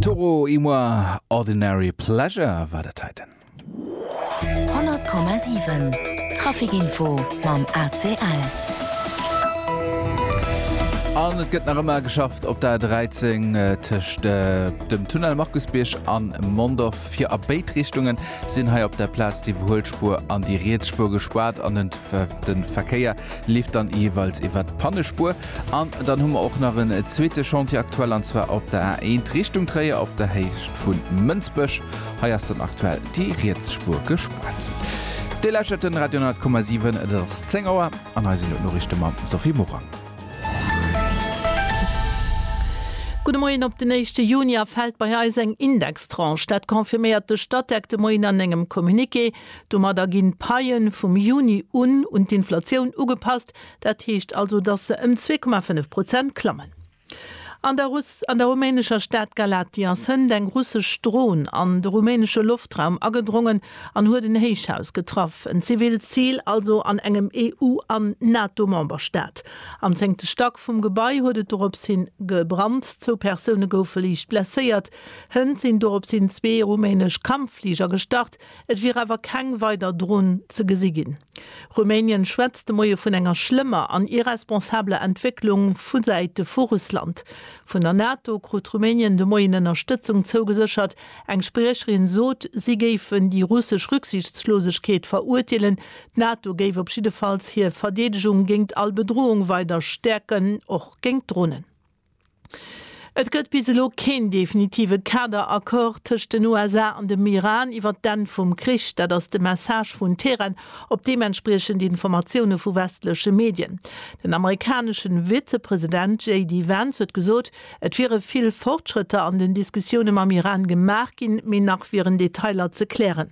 Toro y moi, Ordinary Pleasure war dat heiten. 100,7 Trafic Info mam ACL. An et gëtt nach ëmmer geschafft op der 13 tëscht dem Tunnel Markusbierg an Mondorf. Fir a béid Richtungen sinn hei op der Plaz déi Iwwerhuelspur an déi riets Spur gespaart an den Verkéier leeft dann jeeweils iwwer d'Pannespur. An dann hu mer och nach en zweete Chantier aktuell, an zwar op der A1 Richtung Tréier op der Héicht vu Mënsbech. Hei ass dann aktuell déi riets Spuer gespaart. Dir lauschtert den Radio 100,7, et ass 10 Auer an hei sinn elo d'Noriichte mam Sophie Morang. Gudde Moien, Op den éischte Junier fält bei eis eng Indextranche. Dat confirméiert de Statec de Moien an engem Communiqué. Domadder ginn d'Paie vum Juni un un d'Inflatioun ugepasst, Dat heescht also, datt se ëm 2,5 Prozent klammen. An der an der rumänescher Stad Galati ass hënt eng russesch Dron an de rumänesche Loftraum agedrongen an huet en Héichhaus getraff, en zivilt Zil also an engem EU an NATO-Memberstaat. Am zéngte Stack vum Gebai huet et dorops hi gebrannt, zwou Persoune goufe liicht blesséiert. Hënt sinn doropshin zwee rumänesch Kampffliger gestart, Et wier awer keng weider Dron ze gesi ginn. Rumänien schwätzt de Moie vun enger schlëmmer an irresponsabeler Entwécklung vu Säite vu Russland. Vun der NATO krut Rumänien de Moien Ënnerstëtzung zougeséchert. Eng Spriecherin sot, si géifen déi russesch Rücksichtslosegkeet verurteelen. D'NATO géif op jiddefalls hir Verdeedegung géingt all Bedroung weider stäerken, och géingt Dronen. Et gëtt bis elo keen definitive Kader-Accord tëscht den USA an dem Iran iwwert d'Enn vum Krich. Dat ass de Message vun Teheran op deementspriechend Informatioune vu westleche Medien. Den amerikanesche Vizepresident JD Vance huet gesot, et wiere vill Fortschrëtter an den Diskussioune mam Iran gemaach ginn, mee nach wieren Detailer ze klären.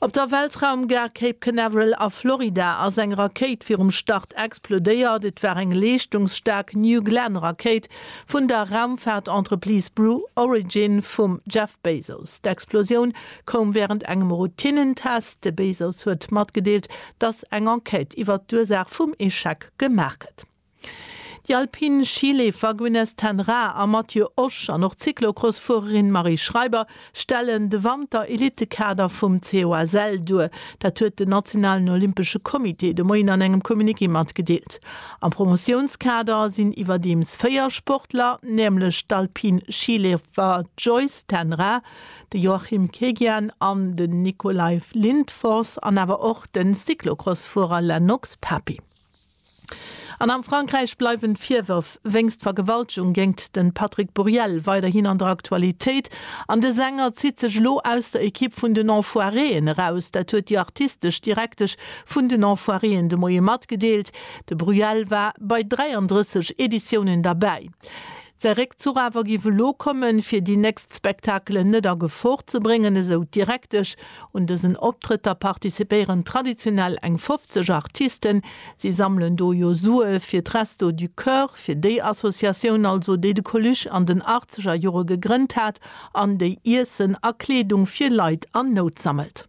Op der Weltraumgare Cape Canaveral a Florida ass eng Rakéit virum Start explodéiert. Et war eng leeschtungsstaark New Glenn Rakéit vun der Raumfaart-Entreprise Brew Origin vum Jeff Bezos. D'Explosioun koum wärend engem Routinnentest. De Bezos huet matgedeelt, datt eng Enquête iwwert d'Ursaach vum Echec gemaach gëtt. Déi alpin Schileefer Gwynneth ten Raa a Mathieu Osch an och d'Cyclocross-Fuererin Marie Schreiber stellen de Wanter-Elitekader vum COSL duer. Dat huet den nationalen olympesche Comité de Moien an engem Communiqué matgedeelt. Am Promotiounskader sinn iwwerdeems véier Sportler, nämlech d'alpin Schileefer Joyce ten Raa, de Joachim Kegian an den Nikolaj Lindfors an awer och de Cyclocross-Fuerer Lennox Papi. An am Frankräich bleiwen d'Virwërf wéinst Vergewaltegung géingt de Patrick Buriel weiderhin an der Aktualitéit an de Sänger zitt sech elo aus der Ekipp vun den Enfoiréen eraus. Dat huet déi artistesch Direktesch vun den Enfoiréen de Moie matgedeelt. De Buriel war bei 33 Editiounen derbäi. Säi Réckzuch awer giff elo kommen, fir déi nächst Spektakelen net a Gefor ze bréngen, esou d'Direktesch. Un dësen Optrëtter participéieren traditionell eng 50 Artisten. Si sammelen do jo Sue fir d'Restos du Cœur, fir déi Associatioun also, déi de Coluche an den achtzeger Jore gegrënnt hat an déi Iessen a Kleedung fir Leit an Nout sammelt.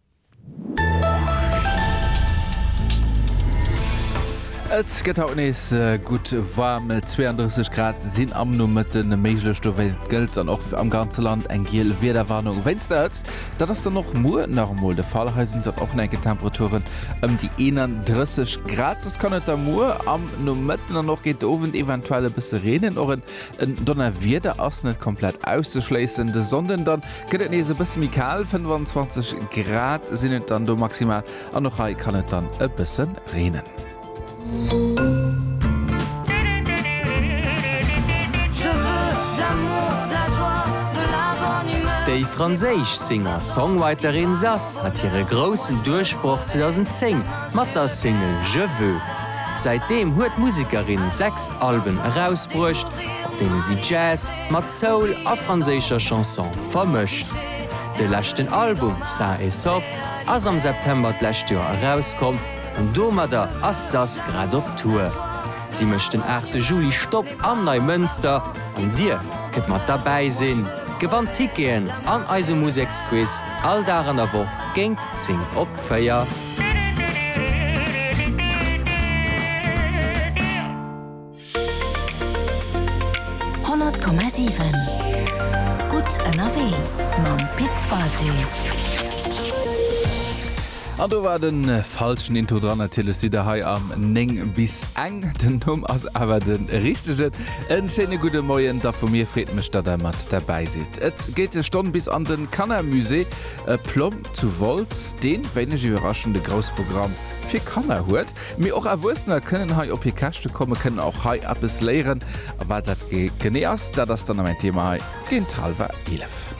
Et gëtt haut nees gutt waarm, 32 Grad sinn am Nomëtte méiglech. Dowéi gëllt dann och am ganze Land eng giel Wiederwarnung wéinst der Hëtzt. Dat ass dann och muer nach emol de Fall, hei sinn dann och nach eng Kéier Temperaturen ëm déi 31 Grad. Soss kann et da muer am Nomëtten an och géint de Owend eventuell e bësse reenen. Och en Donnerwieder ass net komplett auszeschléissen de Sonnden dann. Gëtt et nees e bësse méi kal, 25 Grad sinn et dann do maximal an och hei kann et dann e bësse reenen. Déi franséisch Singer-Songwriterin Zaz hat hire groussen Duerchbroch 2010 mat der Single Je veux. Säitdeem huet d'Musekerin sechs Alben erausbruecht, op deene si Jazz, Mat Soul a franséischer Chanson vermëscht. De leschten Album Sain et Sauf ass am September d'lescht Joer erauskomm an domadder ass d'Sass grad op Tour. Si mécht den 8 de Juli Stopp am Neimënster an Dir kënnt mat derbäi sinn, gewannt Ticketen an eise Museksquiz all Dag an der Woch géint 10 op 4. Honnert Komma siwen Gutt ënnerwee mam Pit Walté. An do war den falschen Intro dran, natierlech sidd der hei am 9 bis eng, den Numm ass awer den richtegen. En schéine gudden Moien da vu mir, freet mech dat der mat derbäi sidd. Et geet e Stonn bis an den Kanner Musée Plomb zu Wolz, deen wéineg iwwerraschend e grouss Programm fir Kanner huet. Mee och Erwuessener kënnen hei op hir Käschte kommen, kënnen och hei eppes léieren. A wat dat genee ass, dat ass dann am en Thema hei géint hallwer 11.